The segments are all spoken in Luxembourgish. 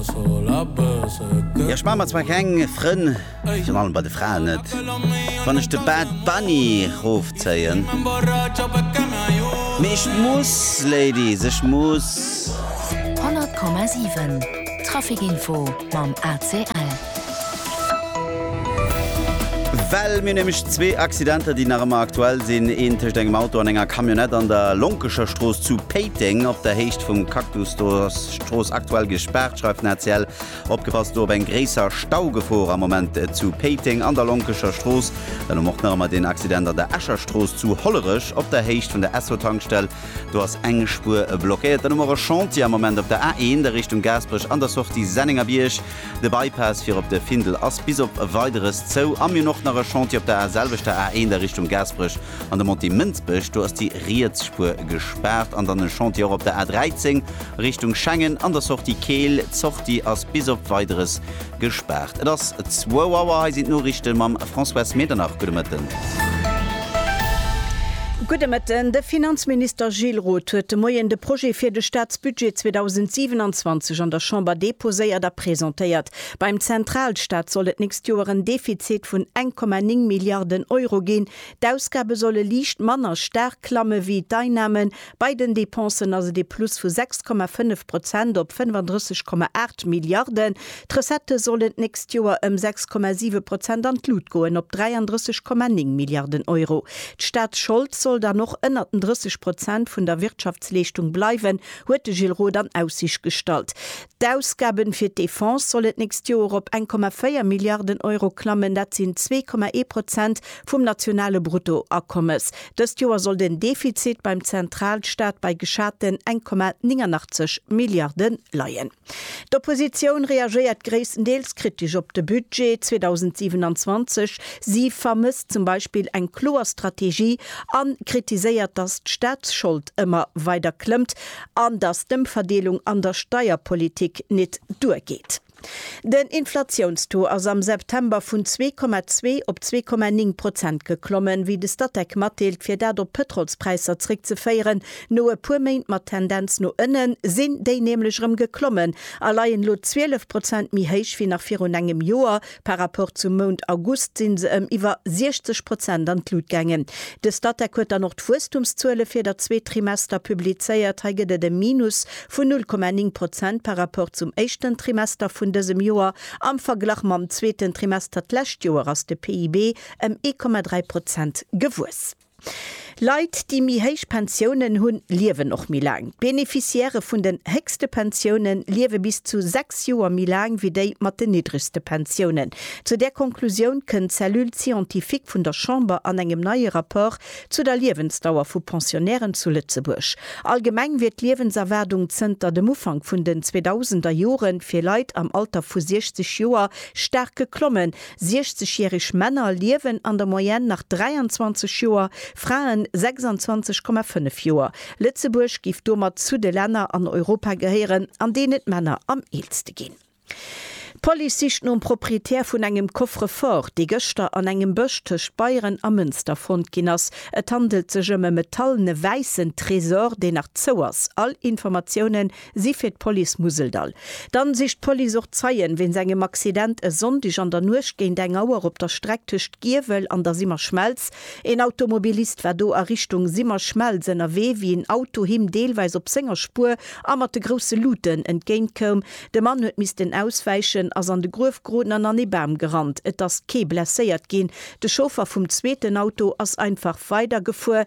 Jo ech maan mer zwar keng Frënn, virun allem bei de Fraen net, wann ech de Bad Bunny rofzéien, mee ech muss Ladies, ech muss. 100,7 Traficinfo mam ACL. Well mir nämlech zwee Accidenter déi nach ëmmer aktuell sinn, een tëscht engem Auto an enger Camionnette an der Lonkecherstrooss zu Péiteng op der Héicht vum Cactus, do ass D'Strooss aktuell gespaart, schreift den ACL. Opgepasst do op eng gréisser Staugefor am Moment zu Péiteng an der Lonkecher Strooss. Dann um och nach ëmmer deen Accident an der Escher Strooss zu Hollerech op der Héicht vun der Esso-Tankstell. Do ass eng Spuer blockéiert. Dann hu mer och e Chantier am Moment op der A1 a Richtung Gaasperech an der Sortie Sennengerbierg. De Bypass fir op de Findel ass bis op Weideres zou. A mir hunn och nach e Chantier op der selwechter A1 a Richtung Gaasperech An de Montée Mënsbech, do ass déi riets Spuer gespaart. An dann e Chantier och op der A13 Richtung Schengen an der Sortie Keel. D'Sortie ass bis op Weideres gespaart. Et ass zwou Auer. Hei sinn d'Noriichte mam Françoise Medernach. Gudde Mëtten. Gudde Mëtten. De Finanzminister Gilles Roth huet de Moien de Projet fir de Staatsbudget 2027 an der Chamber deposéiert a presentéiert. Beim Zentralstaat soll et d'nächst Joer en Defizit vun 1,9 Milliarden Euro ginn. D'Ausgabe solle liicht manner staark klamme wéi d'Einnamen. Bei den Dépensen ass et ee Plus vu 6,5 Prozent op 35,8 Milliarden. D'Recettë sollen d'nächst Joer ëm 6,7 Prozent an d'Lut goen, op 33,9 Milliarden Euro. D'Staatsschold soll dann och ënnert den 30 Prozent vun der Wirtschaftsleeschtung bleiwen, huet de Gilles Roth an Aussicht gestallt. D'Ausgaben fir d'Defense sollen d'nächst Joer op 1,4 Milliarden Euro klammen, dat sinn 2,1 Prozent vum nationale Bruttoakommes. Dëst Joer soll den Defizit beim Zentralstaat bei geschaten 1,89 Milliarde leien. D'Oppositioun reagéiert gréisstendeels kritesch op de Budget 2027. Si vermësst zum Beispill eng kloer Strategie a kritiséiert, datt d'Staatsschold ëmmer weider klëmmt an dass d'Ëmverdeelung an der Steierpolitik nit duergeet. Den Inflatiounstaux ass am September vun 2,2 op 2,9 Prozent geklommen, wéi de Statec matdeelt, fir dat op d'Pëtrolspräisser zréckzeféieren. No e puer Méint mat Tendenz no ënnen, sinn déi nämlech erëm geklommen a leien elo 12 Prozent méi héich wéi nach virun engem Joer, Par Rapport zum Mount August sinn se ëm iwwer 60 Prozent an d'Lut gaangen. De Statec huet dann och d'Wuesstumszuele fir dat zweet Trimester publizéiert. Hei gëtt et e Minus vun 0,9 Prozent par Rapport zum éischten Trimester vun dësem Joer. Am Verglach mam zweeten Trimester d'lescht Joer ass de PIB ëm 1,3 Prozent gewuess. Leit, déi méi héich Pensiounen hunn, liewen och méi laang. D'Beneficiairë vun den héchste Pensioune liewe bis zu sechs Joer méi laang wéi déi mat den niddregste Pensiounen. Zu där Konklusioun kënnt d'Cellule scientifique vun der Chamber an engem neie Rapport zu der Liewensdauer vu Pensionnairen zu Lëtzebuerg. Allgemeng wier d'Liewenserwaardung zënter dem Ufank vun den 2000er Jore fir Leit am Alter vu 60 Joer staark geklommen, 60 järeg Männer liewen an der Moyenne nach 23 Joer, Fraen 26,5 Joer. Lëtzebuerg géif domat zu de Länner an Europa gehéieren, an deenen d'Männer am eelste ginn. D'Police sicht nom Proprietär vun engem Coffre-fort, dee gëschter an engem Bësch tëscht Beieren a Mënster fonnt ginn ass. Et handelt sech ëm e metallene wäissen Tresor, deen nach zou ass. All Informatiounen Si fir d'Police Museldall. Dann sicht d'Police och Zeien wéinst engem Accident e Sonndeg an der Nuecht géint eng Auer op der Streck tëscht Giewel an der Simmerschmelz. Een Automobilist war do a Richtung Simmerschmelz ënnerwee, wéi een Auto him deelweis op senger Spuer a mat de grousse Luuten entgéint koum. De Mann huet missten auswäichen, ass an de Gruef geroden an an ee Bam gerannt. Et ass kee blesséiert ginn. De Chauffer vum zweeten Auto ass einfach weider gefuer.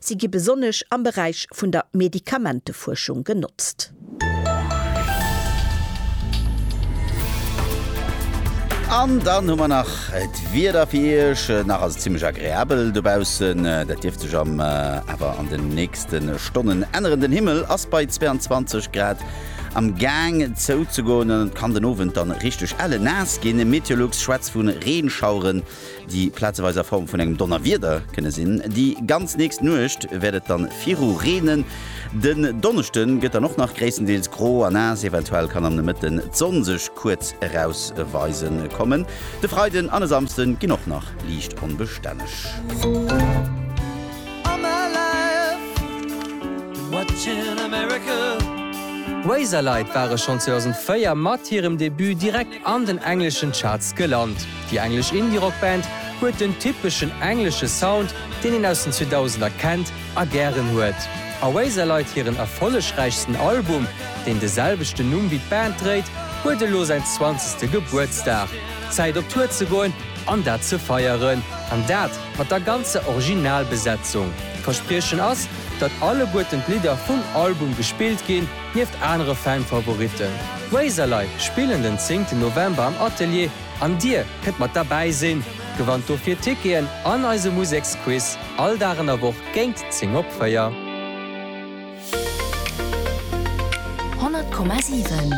Si gi besonnesch am Beräich vun der Medikamentefuerschung genotzt. An dann hu mer nach d'Wieder fir Iech. Nach ass et zimmlech agreabel dobaussen, dat dierft sech am awer an den nächste Stonnen änneren. Den Himmel ass bei 22 Grad am Gaang zouzegoen an et kann den Owend dann richteg ellennaass ginn. Meteolux schwätzt vu Reenschaueren. déi plazeweis a Form vun engem Donnerwieder kënne sinn. Déi ganz nächst Nuecht wäert et dann viru reenen. Den Donneschde gëtt dann och nach gréisstendeels gro a naass, eventuell kann am Nomëtten d'Sonn sech kuerz erausweise kommen. De Freiden an e Samsde ginn och nach liicht onbestänneg. D'Razorleit ware schonn 2004 mat hirem Debut direkt an den engleschen Charts gelant. Déi englesch Indie-Rock-Band huet den typeschen englesche Sound, deen een aus den 2000er kennt a gären huet. Oasis leit hiren erfollegräichsten Album, deen de selwechten Numm wéi d'Band dréit, huet elo säin zwanzegste Gebuertsdag. Zäit op Tour ze goen an dat ze feieren. An dat mat der ganzer Originalbesetzung. D'Verspriechen ass, datt alleguerten d'Lidder vum Album gespillt ginn. Nieft anere Fan-Favoritten, Razorlei spillen den zéngten November am Atelier an dir kënnt mat derbäi sinn. Gewannt dofir Ticketen an eise Museksquiz all Dag an der Woch géint 10 op 4. 100,7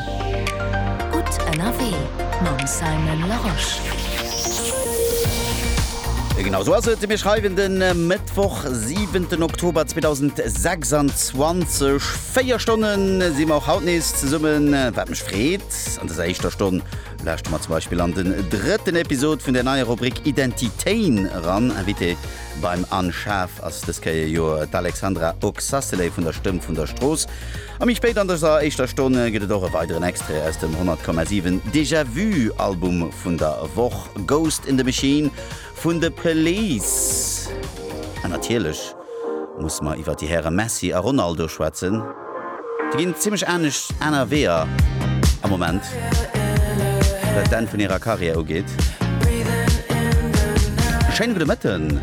Gutt ënnerwee mam Simon Larosche. Genau esou ass et, mir schreiwen de Mëttwoch, siwenten Oktober 2026. 4 Stonnen si mer och haut nees zesummen, wat mech freet. An dëser éischter Stonn lauschte mer zum Beispill an den drëtten Episod vun der neier Rubrik Identitéin eran. Invité beim Anne Schaaf ass dës Kéier jo d'Alexandra Oxacelay vun der Stëmm vun der Strooss. A méi spéit an dëser éischter Stonn gëtt et och e weideren Extrait aus dem 100,7 Déjà-vu Album vun der Woch, Ghost in the Machine Vun de Police. An natierlech muss mer iwwer déi Häre Messi a Ronaldo schwätzen. Déi ginn zimmlech anescht aner Weeër am Moment, wat d'Enn vun hirer Karriär ugeet. Schéine gudde Mëtten.